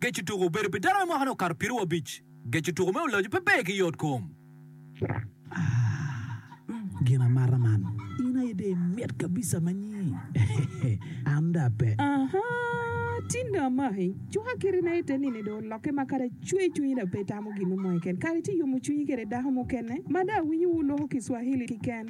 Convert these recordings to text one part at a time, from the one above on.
Geco tuko obedo pi dano me mwaka-ni okato piero wiye abic. Geco tuko me ulacu pe ber ki yot kom. Gin amata man. In aye dong imit kabisa ma nyi. An dong ape. Aha! Tin dong amaki. Cuka kiti na ite nini dong olokke ma kadi acweyo cwinyi dong pe itamo gin mo keken. Kare ci yomo cwinyi kede dako mukene ma dong awinyo wu loko Kiswahili kiken.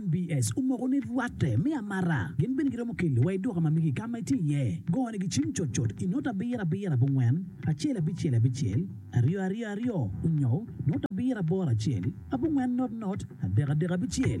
NBS, omoko ni rwatte me amara gin bene giromo keli wa iduka ma migi kama itye iye. Go ne gi cim cut cut i nota abiro abiro abongwen acel abicel abicel aryo aryo aryo onyo nota abiro aboro acel abongwen not not adek adek abicel.